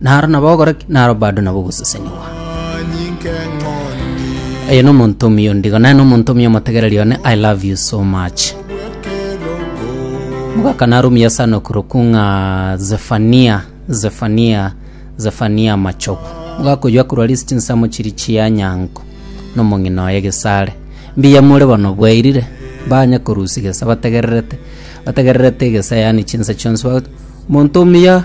Naro nabo ogokora ki? Naro bado nabo ogosesenigwa. Oyo nomonto omuya ondigo, naye nomonto omuya omotegereri one, I love you so much. Mogaka narumia sana okorokwa ng'a Zefania, Zefania, Zefania Machogu. Mogaka oyio akorwa ase chinsemo chiria chia Nyango, nomong'ina oye Gesare. Mbuya more bono bwairire, banye korusia gesa bategererete, bategererete egesa yaani chinsa chionsi, ba- monto omuya.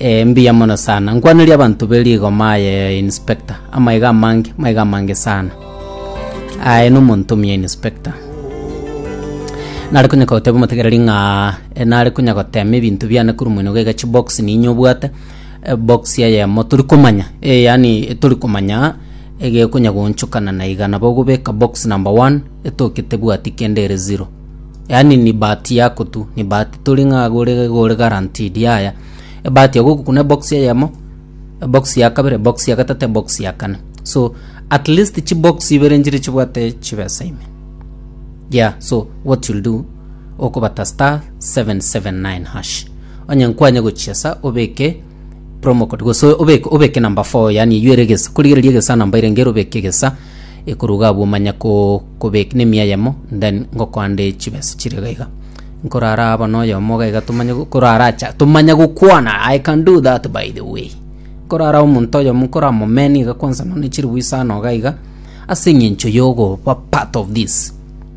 Ee, mbuya mono sana. Nkwaneria abanto be rigoma aye Inspector. Amaiga amange, maiga amange sana. Aye no monto omuya Inspector. Nare kunya kogoteba omotegereri ng'a e, nare kunya gotema ebinto biane korwa moino gaiga chibox niinywe obwate e, box eyemo tori komanya e, yaani e, tori komanya egekonya goonchokana na iga nabo ogobeka box number one etoke tebwati kende ere zero. Yaani ni bahati yako tu, ni bahati tori ng'a iga ore iga ore guaranteed yaya. Ebahati ya gokokuna ebox eyemo, ebox ya kabere, ebox ya gatato, ebox ya kana. So at least chibox ibere nchire chibwate chibesa ime. Yeah so what you'll do, okobata *779#. Onye nkwanye gochiesa obeke promo code gose obeke obeke number four yaani eywo ere egesa korigereria egesa namba ere ngero obeke egesa. Ekoruga abwo manya ko- kobek nemia eyemo then ngokoande chibesa chiria iga iga. Nkorara aba noyomo iga iga tomanye go- koraracha tomanye gokwana I can do that by the way. Nkorara omonto oyomo nkoramomeny iga kwansa nonye ne chilifu isano iga iga ase eng'encho yogoba part of this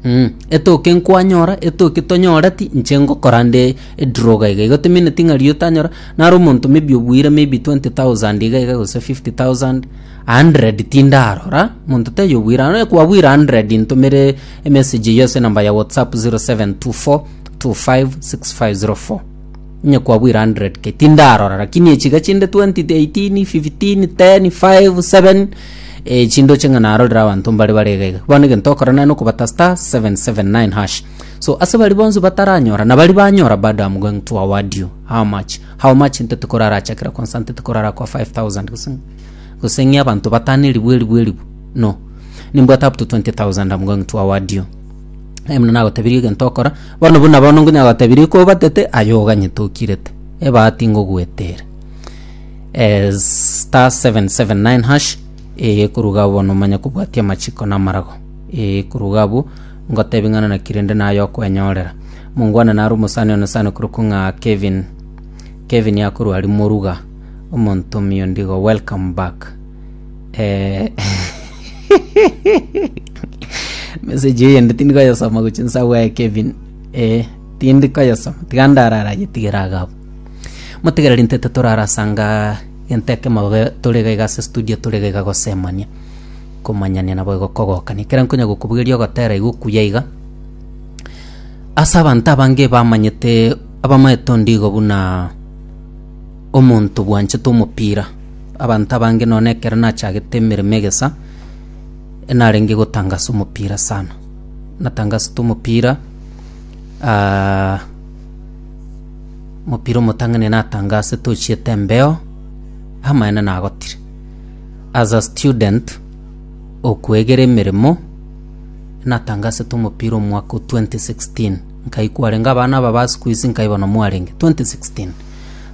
mm. Etoke nkwanyora etoke tonyoreti inche ngokora nde edraw iga iga igo tomineti ng'a riu otanyora naro omonto maybe obuire maybe twenty thousand iga iga gose fifty thousand. Hundred tindarora, monto taiyo obwirano, eh, kwabwire hundred intomere emessage eyio ase enamba ya WhatsApp 0724256504. Onye kwabwire hundred ke tindarora, lakini echiga chinde 20, 18, 15, 10, 5, 7, eh, chindoche ng'a narorire abanto mbare bare iga iga. Bono egento okora naye nokobata star 779 hash. So ase bari bonsi bataranyora, na bari banyora bado am going to award you. How much? How much? Ntotikorarachakera kwansa ntotikorara kwa 5000 gose. Gose ng'e abanto batano eribu eribu eribu? No. Nimbwate up to 20,000 am going to award you. Aye buna nagotebirie egento okora, bono buna bono nkonya gotebirie ko obatete, aye oganyete okirete. Ebahati ngoguetere. Eh, star 779 hash, eh, ekoruga bono omanye kobwatia amachiko na amarago. Eh, ekoruga abwo, ngotebi ng'ana naki rende naye okwenyorera. Mongwana naro omosani one sano korokwo ng'a Kevin. Kevin akorwa aria moruga. omonto omiondigo welcome back eh message eyende tindi koyesoma gochia nsa gwaye Kevin eh tindi koyesoma tiga ndarara yetigere iga abwo motigereri ntete torarasanga gento ekemo babe tore iga iga ase studio tore iga iga gosemania komanyania nabo igo kogokania ekero nkonya gokobugeria ogotera iga okuya iga ase abanto abange bamanyete abamaete ondigo buna. Omonto bwanchete omopira. Abanto abange nonya ekero nachagete emeremo egesa, narenge gotangasa omopira sana. Natangasete omopira, omopira omotang'ani natangase tochiete embeo, amaene nagotire. As a student okoegera emeremo, natangasete omopira omwaka o twenty sixteen. Nkaikwa arenge abana aba ba siku ici nkaibona mwarenge 2016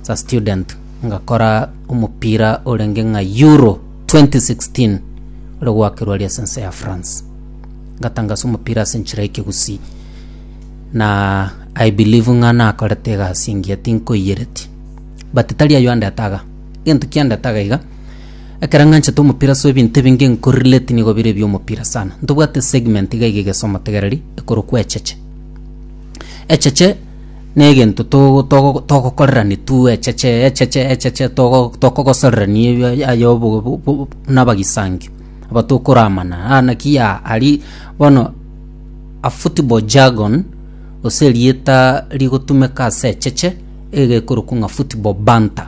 sa student ngakora omopira orenge ng'a Euro 2016 ore gwakerwa ria sense ya France ngatangasa omopira ase enchera y'ekegusii na I believe ng'a nakorete egasi engiya tinkoiyereti but tari ayio andete iga egento kiandete iga Ekero ng'anchete omopira ase ebinto ebinge nko-relate nigo bire ebiomopira sana. Ntobwate segment iga iga egesa omotegereri ekorokwa echeche. Echeche na egento togo togo togokorerani tu echeche echeche echeche togo tokogosorerania ebi aya aya obogo bu- bu- bu na abagisangio aba tokoramana aa naki yaa aria bono a football jargon gose erieta rigotumeka ase echeche iga ekorokwa ng'a football banter.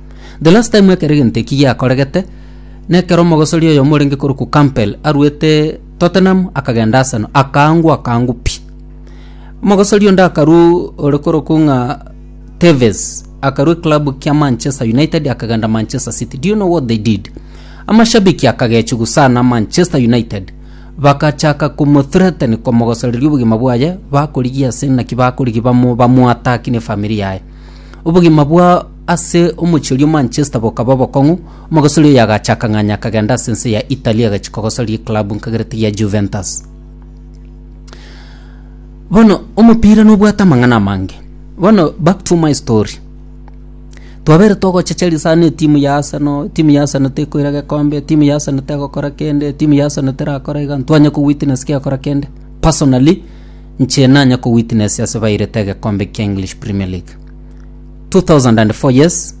The last time ekero egento eki giakoregete, nekero omogosori oyomo orenge korokwa Campbell aruete Tottenham akagenda Arsenal, akaangwa akaangwa pi. Omogosori onde akarwa ore korokwa ng'a Tevez, akarwa eclub kia Manchester United akagenda Manchester City. Do you know what they did? Amashabiki akagechigu sana Manchester United, bagachaka komothreaten komogosoreria obogima bwaye, bakorigia ase naki bakorigia bamo bamoattack na efamiri yaye. Obogima bwa Ase omochie oria o Manchester bokaba obokong'u, omogosori oyo agacha akang'anya akagenda ase ense ya Italy agachia kogosoria eklabu nkagerete ya Juventus. Bono omopira nobwate amang'ana amange. Bono back to my story. Twabere togochecheria sana etimu ya Arsenal, etimu ya Arsenal tekoira gekombe, etimu ya Arsenal tegokora kende, etimu ya Arsenal terakora iga, ntwanya kowitness kegakora kende. Personally, inche nanya kowitnessia ase bairete egekombe kia English Premier League. 2004 yes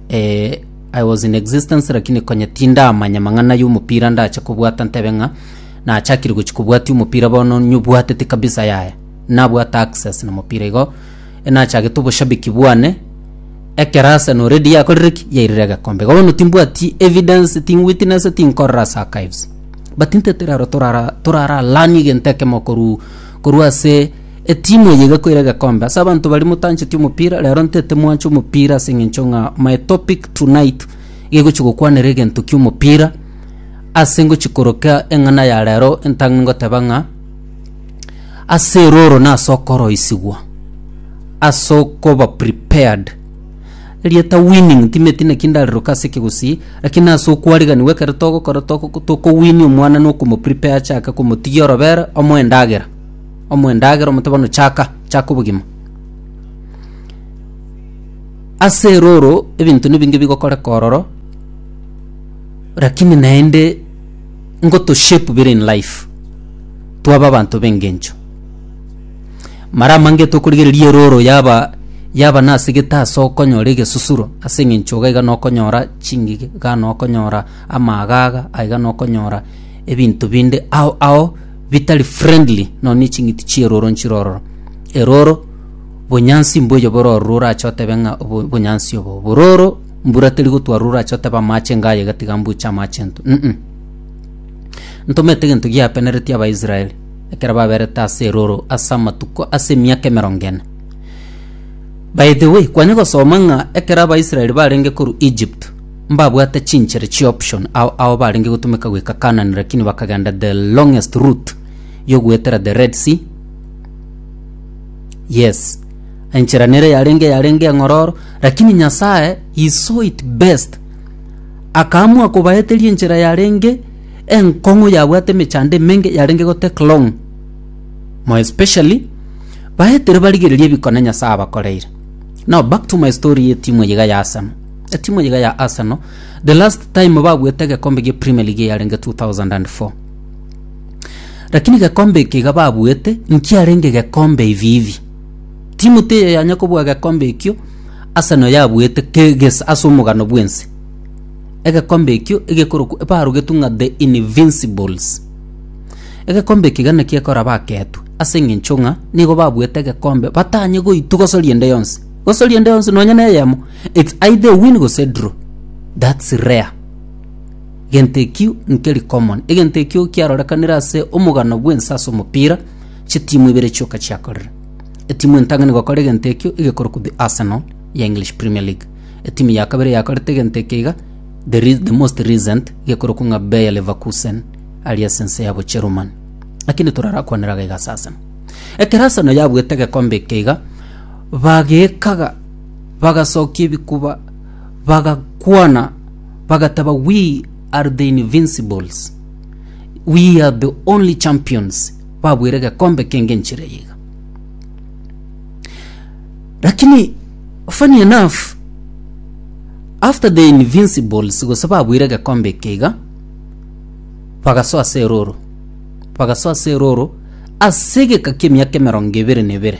eh, i was in existence lakini konye tindamanya mang'ana y'omopira ndache kobwata ntebe ng'a nachakire gochi kobwatia omopira bono nyobwatete kabisa yaya nabwata access na mopira igo eh, nachagete oboshabiki bwane ekero Arsenal already yakorire ki yairire egekombe igo bono timbwati evidence tingwitness tinkorora ase archives but ntete rero torara torara learn egento ekemo korwa korwa ase Etimu eye igakoira egekombe ase abanto baria motancheti omopira rero ntete mwanche omopira ase eng'encho ng'a my topic tonight iga egochi gokwanera egento kia omopira ase ngochi koroka eng'ana ya rero entang'ani goteba ng'a ase eroro na ase okoroisigwa ase okoba prepared erieta winning timeti naki ndareroka ase ekegusii lakini ase okwariganiwa ekero togokora toko tokowini omwana na okomoprepare achake komotigia orobere omoe endagera omoe endagera omote bono chaka chaka obogima ase eroro ebinto nibinge bigokoreka ororo lakini naende ngoto shape bire in life twaba abanto b'engencho mara amange tokorigereria eroro yaba yaba nasegete ase okonyora egesusuro ase eng'encho iga iga nokonyora chingige iga nokonyora amagaga aiga nokonyora ebinto binde ao ao bitari friendly nonya ne ching'iti chierooro nchire ororo. Erooro bonyansi mboyo bore ororo orache otebe ng'a obo bonyansi obo obo roro mbura teri gotwa roro orache otebe amache enga aye iga tiga mbuche amache nto mm. Ntomete egento giapeneretie Abaisraeli ekero baberete ase erooro ase amatuko ase emiaka emerongo ene. By the way, kwanye gosoma ng'a ekero Abaisraeli barenge korwa Egypt, mbabwate chinchera chi option ao ao barenge gotumeka goika Canaan lakini bakagenda the longest route yogoetera the red sea yes enchera nere yarenge yarenge eng'ororo lakini nyasaye he saw it best akaamua kobaeteria enchera yarenge enkong'u yabwate emechando emenge yarenge gotake long more especially baetere barigereria ebikone nyasaye abakoreire now back to my story etimu eyiga ya arsenal Etimu iga ya Arsenal the last time babuete egekombe gia Premier League yarenge 2004 lakini gekombe eke iga babuete nkiarenge gekombe ivivi timu teye yanya kobua gekombe ekio Arsenal yabuete keges ase omogano bwense egekombe ekio egekoroku barugetu ng'a the invincibles egekombe eke gana kiekora baketwe ase eng'encho ng'a nigo babuete egekombe batanye goitu gosoria ende yonsi gose oriende onsi nonya neyemo it's either win gose draw that's rare egento ekio nkeri common egento ekio kiarorekanire ase omogano bwensa ase omopira chitimu ibere chioka chiakorire etimu entang'ani gokora egento ekio egekorokwa the arsenal ya english premier league etimu ya kabere yakorete egento eke iga the, re- the most recent gekorokwa ng'a bayer leverkusen ari ase ense ya bocherumani lakini torarakwanera iga ase arsenal ekero arsenal yabuete egekombe eke iga Bageekaga, bagasokia ebikuba, bagakwana, bagateba, We are the Invincibles, we are the only champions, babuire egekombe kenge enchera eye iga. Lakini funny enough, after the Invincibles gose babuire egekombe eke iga, bagasoa ase eroro, bagasoa ase eroro ase egeka ki'emiaka emerongo ebere na ebere.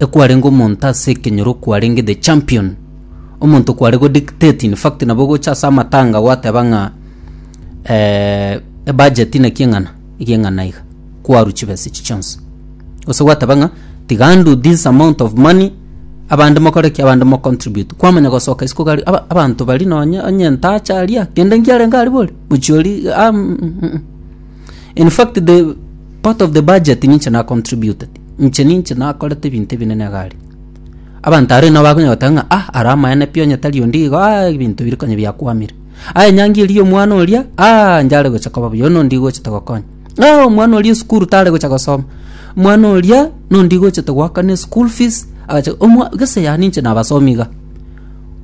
ekwarenge omonto ase ekenyoro okwarenge the champion omonto kware go dictate in fact nabo gocha ase amatanga gwateba ng'a eh, ebudget naki eng'ana ege eng'ana iga kwaru chibesa echi chionsi gose gwateba ng'a tiga ndu this amount of money abande mokore ki abande mocontribute kwamanya gosoka isiko gari aba- abanto bari nonye onye entacha aria kende nkiarenge aria bori mochiori ah, mm, mm, mm. in fact the part of the budget ninche na contributed Inche ninche nakorete ebinto ebinene iga aria. Abanto aria nabo bakonyara goteba ng'a ah, ara amaene pi onye tari onde igo ah, ebinto bire konya biakwamire. Ah, enyangi eria ya omwana oria ah, njare gocha koba buya, oyio nonde igo ochete gokonya. Ah, omwana oria esukuru tare gocha gosoma, omwana oria nonde igo ochete goakana eschool fees, agacha omwa gese yane inche nabasomi iga.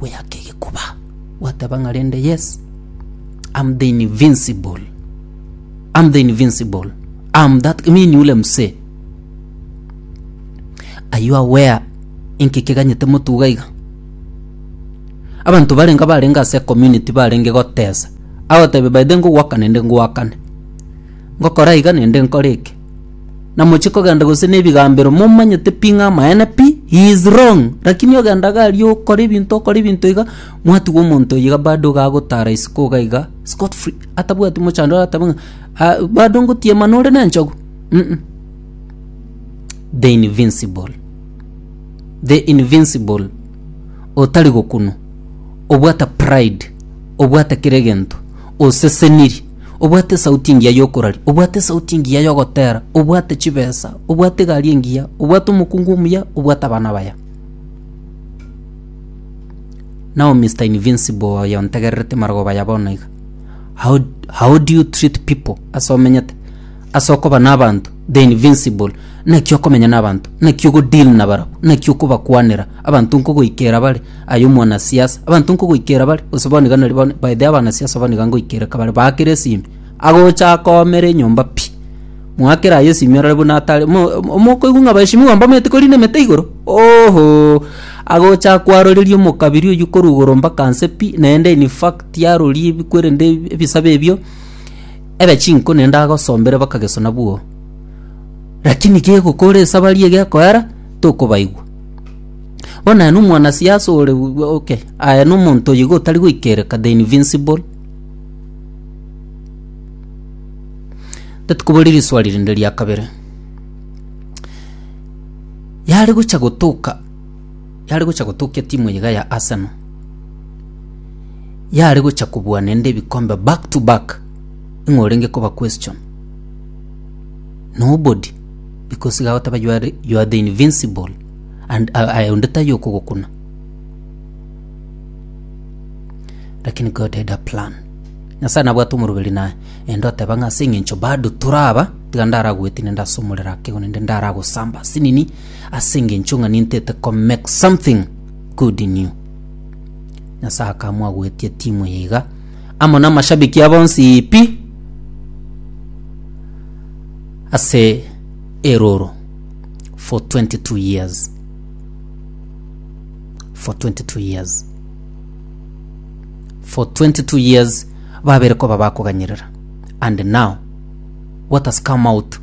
Goyaka egekuba, gwateba ng'a rende yes, am the invincible, am the invincible, am that, mimi ni ule msee. Are you aware inki keganyete motuga iga? Abanto barenge abarenge ase community barenge gotesa agotebia by the way ngogwaka nende ngwakane ngokora iga nende nkore eke namochie kogenda gose na ebigambero momanyete pi ng'a amaene pi he is wrong lakini ogenda iga aria okora ebinto okora ebinto iga mwatigwa omonto oyo iga bado iga agotara isiko iga iga scot free atabwati mochando arateba ng'a ah bado ngotiema nore nenchogu. Mm-mm. the invincible the invincible otari gokunu obwata pride obwata kere gento oseseniri obwate sauti engiya yokorari obwate sauti engiya yogotera obwate chibesa obwate gari engiya obwate omokungu omuya obwate abana baya now mr invincible oyo ontegererete marogoba ya bono iga how, how do you treat people ase omenyete Ase okoba nabanto the invincible, naki okomenya nabanto, naki ogodeal nabarabwo, naki okobakwanera, abanto nkogoikera bare, aye omwanasiasa, abanto nkogoikera bare, gose bono iga nari bono, by the abanasiasa bono iga ngoikereka bare, baakere esimi, agocha akoomera enyomba pi, mwakere aye esimi orore buna atare, mo- mo- mokoigwa ng'a abaeshimiwa mbamanyete korina emete igoro, oohoo, agocha akwaroreria omokabiri oyio korwa igoro mpaka nse pi, naende in fact arorie ebikwere nde ebisabe ebio, Ebe chinko ne ndagosombere bakagesona bwoo, lakini kegokora esabari egekoera tokobaigwa. Bono aye nomwanasiasa ore okay, aye nomonto oyiga otari goikereka the invincible. Tatikobori riswari rinde ria kabere. Yare gocha gotoka Yare gocha gotokia timu eye iga ya Arsenal. Yare gocha kobua nende ebikombe back to back. Ing'o orenge koba question? Nobody. Because iga agoteba you are, you are the invincible and uh, aye onde tayo okogokuna. Lakini God had a plan. Nyasaye nabwate omoroberi naye. Ende oteba ng'a ase eng'encho bado toraba tiga ndaragwetine ndasomorera akego nende ndaragosamba sinini ase engencho ng'a nintete ko make something good in you. Nyasae akamwagoetia timu eye iga amo na amashabiki abo onsi pi ase eroro for 22 years for 22 years for 22 years babere koba bakoganyerera and now what has come out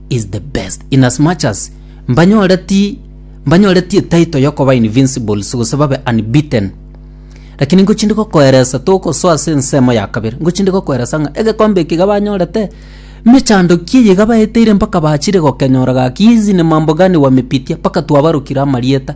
is the best in as much as mbanyoreti mbanyoreti etaito yokoba invincible sigose babe unbeaten lakini ngochindi gokoeresa togosoa ase ensemo ya kabere ngochindi gokoeresa ng'a egekombe eki iga banyorete mechando ki eye iga baeteire mpaka bachire gokenyora gaki hizi ni mambo gani wamepitia mpaka twabarokire amarieta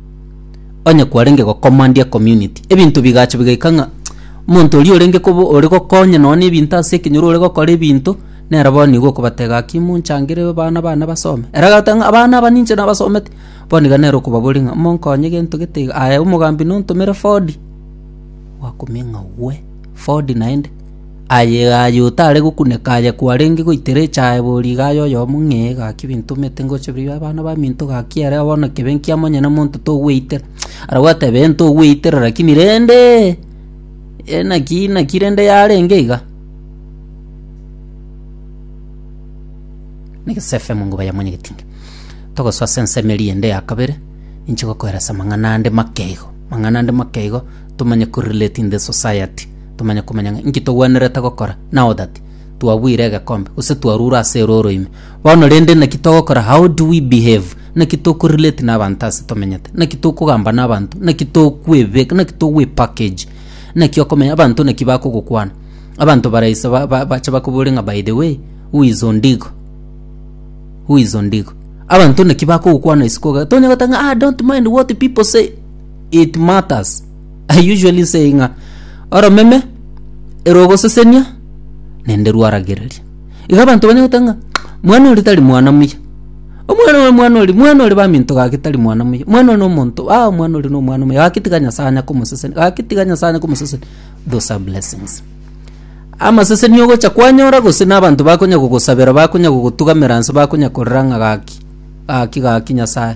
Onye kwarenge gocommand ecommunity, ebinto bigacha bigaika ng'a omonto oria orenge koba ore gokonya nonye na ebinto ase ekenyoro ore gokora ebinto, nere bono nigo okobateba gaki monchangere abana bane basome. Ere agateba ng'a abana aba ninche nabasomete, bono iga nere okobaboria ng'a monkonye gento gete iga, aye omogambi nontomere Ford, gwakumia ng'a we, Ford naende. Aye aye otare gokuneka aye kwarenge goitera echaye bori igaye oyomo ng'e gaki binto omete ngocha biri abana ba minto gaki ere bono kebe nkia monyene monto togweitera ara gwateba ee ntogweitera lakini rende ee naki naki rende yarenge iga. Na egesefe mongoba ya monyene getinga togosoa ase ensemo eria ende ya kabere ninche gokoera ase amang'ana ande make igo amang'ana ande make igo tomanye ko relate in the society. Tomanye komanya ng'a inki togwenerete gokora, nao that twabuire egekombe, gose twarure ase ere oro ime. Bono rende naki togokora, how do we behave? Naki tokorelate na abanto ase tomenyete? Naki tokogamba na abanto? Naki tokwebeka, naki togwepackage? Naki okomenya abanto naki bakogokwana? Abanto baraise ba ba bache bakobore ng'a by the way, who is Ondigo? Who is Ondigo? Abanto naki bakogokwana isiko iga, tonya goteba ng'a ah don't mind what people say, it matters. I usually say ng'a oromeme ero ogosesenia nende rwaragereria iga abanto banya goteba ng'a mwana ori tari mwana muya omwana ore mwana ori mwana ore baminto gaki tari mwana muya mwana ore nomonto ah omwana ore nomwana omuya gaki tiga nyasae anya komoseseni gaki tiga nyasae anya komoseseni those are blessings amaseseni ogocha kwanyora gose na abanto bakonya gogosabera bakonya gogotugamera nse bakonya korora ng'a gaki gaki gaki nyasae.